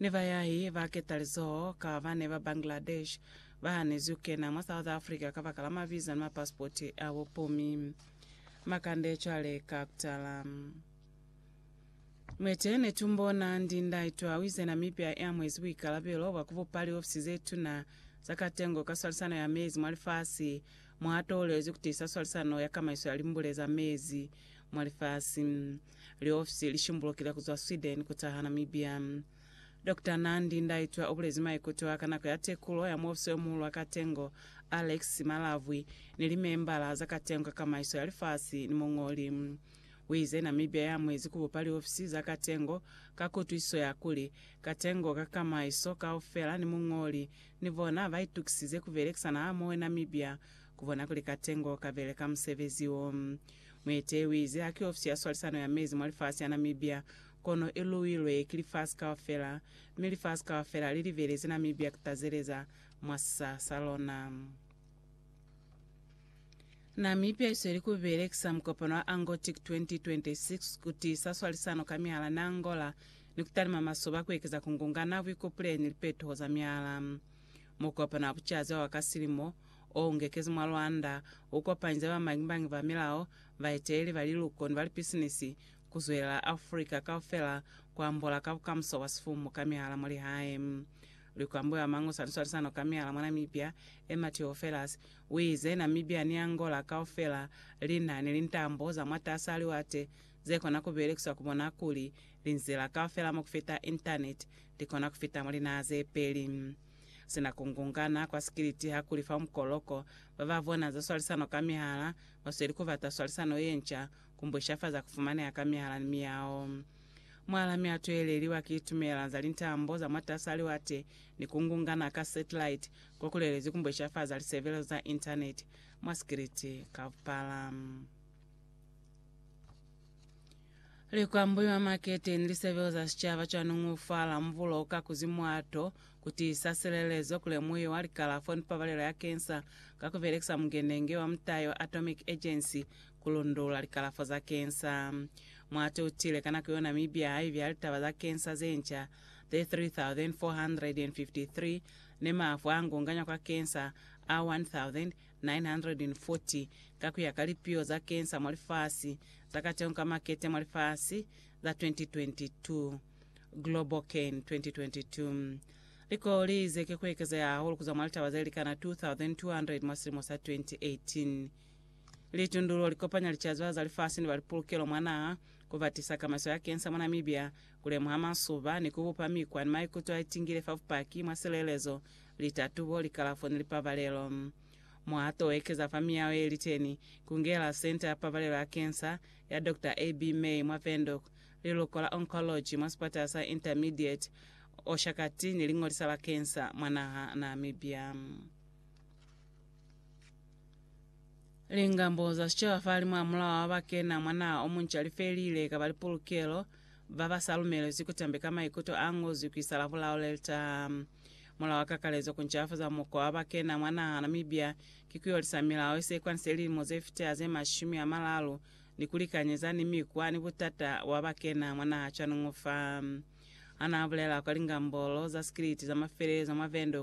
Ni bayahi ba ketalizoho ka bane ba Bangladesh ba hanezwi kukena mwa South Africa kabakala maviza ni mapasipoti a bupumi. Makande cwale ka kutala. Mwete Netumbo Nandi Ndaitwah uize Namibia iamwezi buikalabelo bwa kubupa liofisi zetuna za katengo ka swalisano ya mezi mwa lifasi mwaatoolelezwi kutiisa swalisano ya kamaiso ya limbule za mezi mwa lifasi. Liofisi li shimbulukile ku zwa Sweden ku taha Namibia. Dokta Nandi Ndaitwah u bulezi maikuto a ka nako ya tekulo ya muofisi yo muhulu wa katengo, Alex Simalavwi, ni limembala za katengo ka kamaiso ya lifasi ni muñoli. U ize Namibia ya amuezi ku bupa liofisi za katengo ka kutwisiso ya kuli, katengo ka kamaiso kaufela ni muñoli ni bona ba itukisize ku belekisana hamoho Namibia ku bona kuli katengo ka beleka musebezi wo. Muetehi uize haki ofisi ya swalisano ya mezi mwa lifasi ya Namibia, kono iluilwe ki lifasi kaufela, mi lifasi kaufela lilibelezi Namibia kutazeleza mwa sisa sa lona. Namibia isweli kubelekisa mukopano wa Angotic 2026 kutiisa swalisano ka miala ni Angola ni kutalima masoba kuekeza kungungana, buikupuleli ni lipetuho za miala. Mukopano wa bucazi wa ka silimo o ngekezi mwa Rwanda, u kopanyeza bamañibañi ba milao, baeteleli ba liluko ni ba lipisinisi, ku zwelela Afrika kaufela ku ambola ka bukamuso bwa sifumu ka mihala mwa lihae. Likwambo ya Mango sa Liswalisano ka Mihala mwa Namibia, Emma Theofelus, u ize, Namibia ni Angola kaufela li na ni lintambo za mwatas'a liwate ze kona ku belekiswa ku bona kuli linzila kaufela mwa ku fita Intaneti li kona ku fita mwa linaha ze peli. Sina ku ngungana kwa sikiliti ha ku li fa mukoloko, ba ba bona za swalisano ka mihala ba sweli ku bata swalisano ye nca, ku mbwishafaza ku fumaneha ka mihala ni miyao. Mualami a tweheleliwa ki tumelano za lintambo za mwatas'a liwate ni ku ngungana ka satellite ko ku lelezi ku mbwishafaza lisebelezo za Intaneti mwa sikiliti kaupala. Likwambuyo mwa makete ni lisebelo za sicaba cwanungi u fa lambulo ka kuzi mwato, ku tiisa silelezo, ku lemuhiwa likalafo ni pabalelo ya kensa ka ku belekisa mukenenge wa mutayo Atomic Agency ku lundula likalafo za kensa. Mwato u tile ka nako yo Namibia ha ibi ha litaba za kensa ze nca ze 3,453 ni mafu a ngunganywa kwa kensa a 1,000 940 ka ku ya ka lipiho za kensa mwa lifasi, za kateho ka makete mwa lifasi za 2022, GlobalCan 2022. Likolo li ize ki ku ekezeha hahulu ku zwa mwa litaba ze likana 2,200 mwa silimo sa 2018. Litundululo li kopanya licazwa za lifasi ni ba lipulukelo mwa naha, ku batisa kamaiso ya kensa mwa Namibia, ku lemuha masuba, ni ku bupa mikwa ni maikuto a itingile fa bupaki mwa silelezo Litatubo, likalafo ni lipabalelo. Mwa to ekeza fa miyaho ye liteni, ku ngela Centre ya Pabalelo ya Kensa ya Doctor AB. May mwa Windhoek, Liluko la Oncology mwa sipatala sa Intermediate Oshakati ni Liñolisa la Kensa mwa naha Namibia. Lingambo za sicaba fa limo a mulao wa ba kena mwa naha o munca li felile, kaba li pulukelo, ba ba sa lumelezwi ku tambe ka maikuto a ngozwi ku isa la bulao le li taha. Mulao wa kakalezo kuncafuza mukwa wa bakena mwa naha Namibia ki kuyolisa milao isekwanize lilimo zefiteha ze mashumi amalalu ni kulikanyeza ni mikwa ni butata bwa bakena mwa naha cwanuñu fa. Hanaabulela kwa lingambolo za sikiliti za mafelelezo mwa Windhoek,